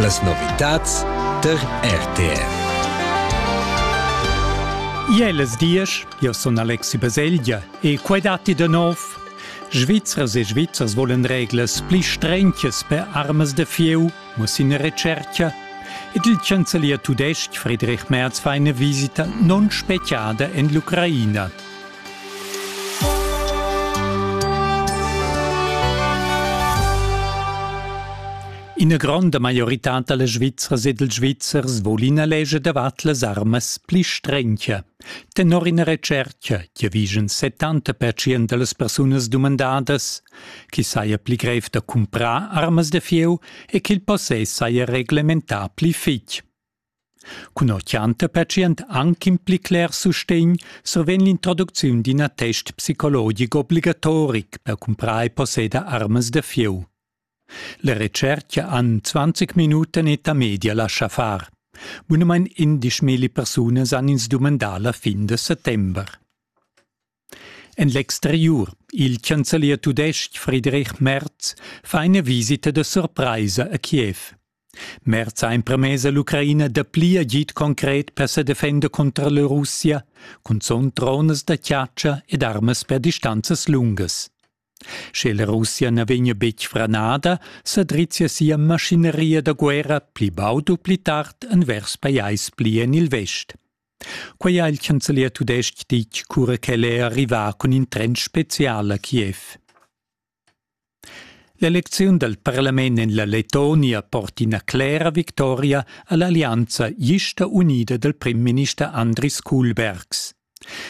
Las novitads tar RTR. Jeles diesch, io sun Alexi Baselgia e quai datti da nov. Svizzers e Svizzers volen reglas pli strentches per armas de fieu, muss in recerca, ed il chancelier tudesc Friedrich Merz fa eine visita non speciada in l'Ucraina. Ina gronda maioritad da las Svizzras e dals Svizzers vul ina legia davart las armas pli strencha. Tenor ina retschertga che vigen 70% da las persunas dumandadas chi saja pli grev da cumprar armas da fieu e ch'il possess saja reglementà pli fitg. Cunoccianta patient anc in pli cler sustegn survegn l'introducziun d'in attest psicologic obligatoric per cumprar e posseder armas da fieu. La retschertga han 20 minuten e ta media lascha far. Bunamain 11 persuna san ins dumandar la fin de settember. En l'exteriur, il chancelier tudestg Friedrich Merz fa ina visita da surpraisa a Kiev. Merz ha empremess a l'Ucraina dapli agid concret per sa defender cunter la Russia, cunzunt dronas da chatscha ed armas per distanzas lungas. Sche la Russia na vegnia betg franada, sa drizzia sia maschineria da guerra pli baud u pli tard envers pajais pli en il vest. Quei ha il chancelier tudestg ditg cura ch'el è arrivà cun in tren spezial a Kiev. L'elecziun dal parlament en la Lettonia porta ina clera victoria a l'allianza gista unida dal primminister Andris Kuhlbergs.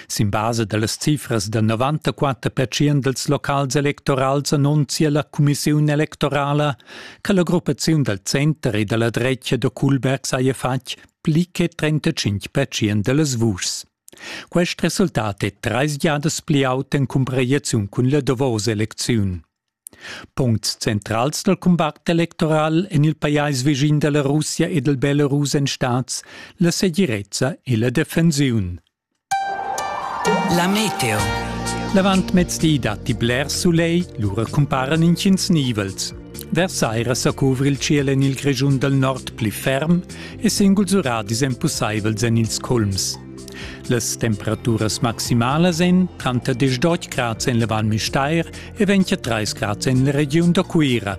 Sin basa da las cifras da 94% dals locals electorals annunzia la cumissiun electorala che la gruppaziun dal center e da la drecia da Kuhlbergs haja fatg pli che 35 percent dallas vuschs. Quest resultat è treis giadas pli aut en cumparaziun cun la davos elecziun. Puncts centrals dal combat electoral en il pajais vischin da la Russia e dal Belarus èn stads la segirezza e la defensiun. La meteo. L'avantmezdi datti bler sulegl, lura cumparan intgins nivels. Vers saira sa cuvra il ciel en il Grischun dal nord pli ferm e singuls uradis èn pussaivels en ils culms. Las temperaturas maximalas èn tranter 10 grads en la Val Müstair e 23 grads en la regiun da Cuira.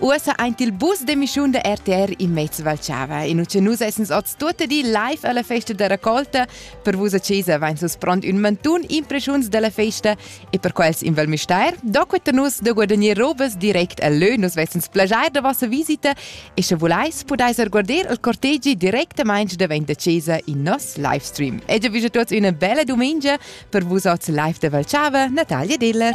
Uossa aint il bus d'emissiun da RTR in mez Val Chava. In ucce nus essens oz tuotta di live alla festa da raccolta. Per vus a Cesa vain sus pront ün mantun impreschiuns dalla festa e per quels in Val Mistair, do quetta nus da guadagner robas direct a lö, nus vessens plagiar da vossa visita e sche vulais pudais guarder il cortegi directamaints davent da Cesa in nos livestream. E già visa tuots üna bella dumengia per vus oz live da Val Chava, Natalia Diller.